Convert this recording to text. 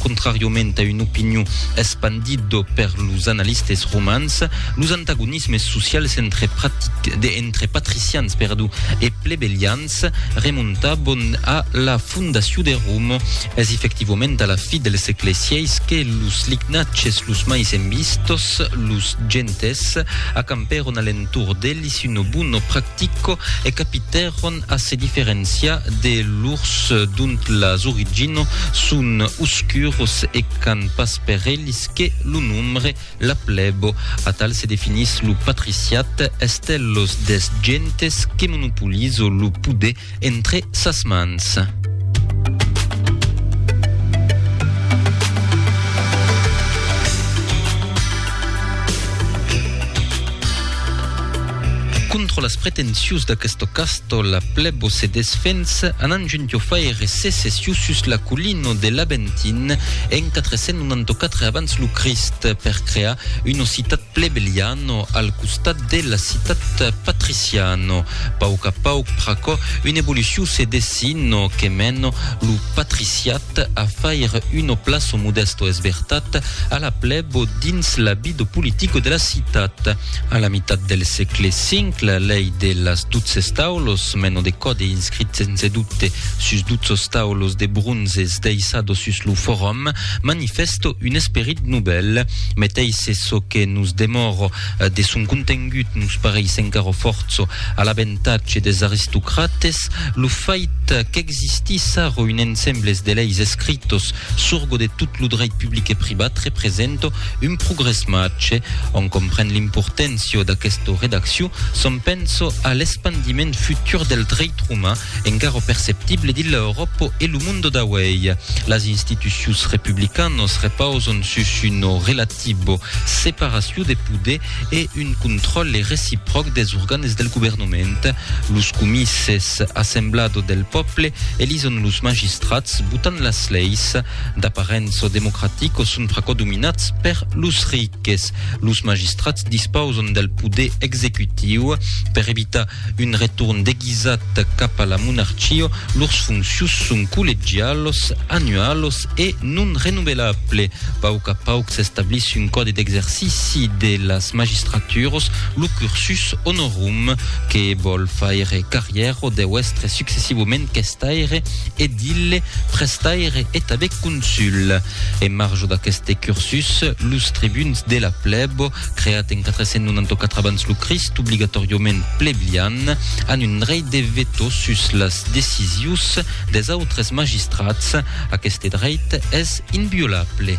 Contrariament a una opinion espandida per los analistes romans, los antagonismes socials entre patricians e plebelians remontavan a la fondacion de Roma. Es efectivament a la fi del sègle vi que los lignatges los mai envistos, los gentes, acampèron a l'entorn d'elis una bona practica Tico e capitèron a se diferenciar de lors dont las origino son oscuros e qu'an pas per elis que lo nombre, la plèbo. Atal se definís lo patriciat, estèllos des gentes que monopolizo lo poder entre sas mans. Contra las pretensions d'aquesto casto la plebo se desfensa anant junto faire secession sus la collino de l'Aventin en 494 abans lo Crist per crear una citat Plebeliano al costat de la citat patriciano. Pauc a pauc pr'aquò una evolucion se dessino que meno lo patriciat a faire uno plaço modesto esbertat a la plebo dins la bido politico de la citat. A la mitat del sègle V la lei de las dotze staulos, meno de còde inscrit sense dubte sus dotzos staulos de bronzes deiçados sus lo forum, Manifèsto un esperit novèl, meteis se çò que nos demòro de son contengut nos pareis encara fòrça a l'aventatge des aristocrates, lo fait qu'existissa ro un ensembles de leis escritos surgo de tot lo dreit public e privat represento un progrès mache. Ont compren l'importància d'aquesta redaccion, s'ont penso a l'espandiment futur del dreit roman, encara perceptible dins l'Euròpa e lo monde d'auèi. Las institucions republicanas repausan sus una relativa separacion de poder e un contròle recipròc dels organes del governament. Los comices, assemblada del pòble, elison los magistrats, botan las leis. D'aparença democratica, son pr'aquò dominats per los rics. Los magistrats dispausan del poder executiu per evitar Un retorn deguisat cap a la monarchia, lors fonctions son collegialos, annualos e non renovelable. Pauc a pauc s'establís un còde d'exercici de las magistraturos, lo cursus honorum, que vòl faire carrièro deu èstre successivament questaire, edille, prestaire e tanben consul. En marge d'aqueste cursus, los tribuns de la plèbo Art, creat en 494 abans lo Crist, obligatòriament pleblian, an un dreit de veto sus las decisius des autres magistrats. Aqueste dreit es inviolable.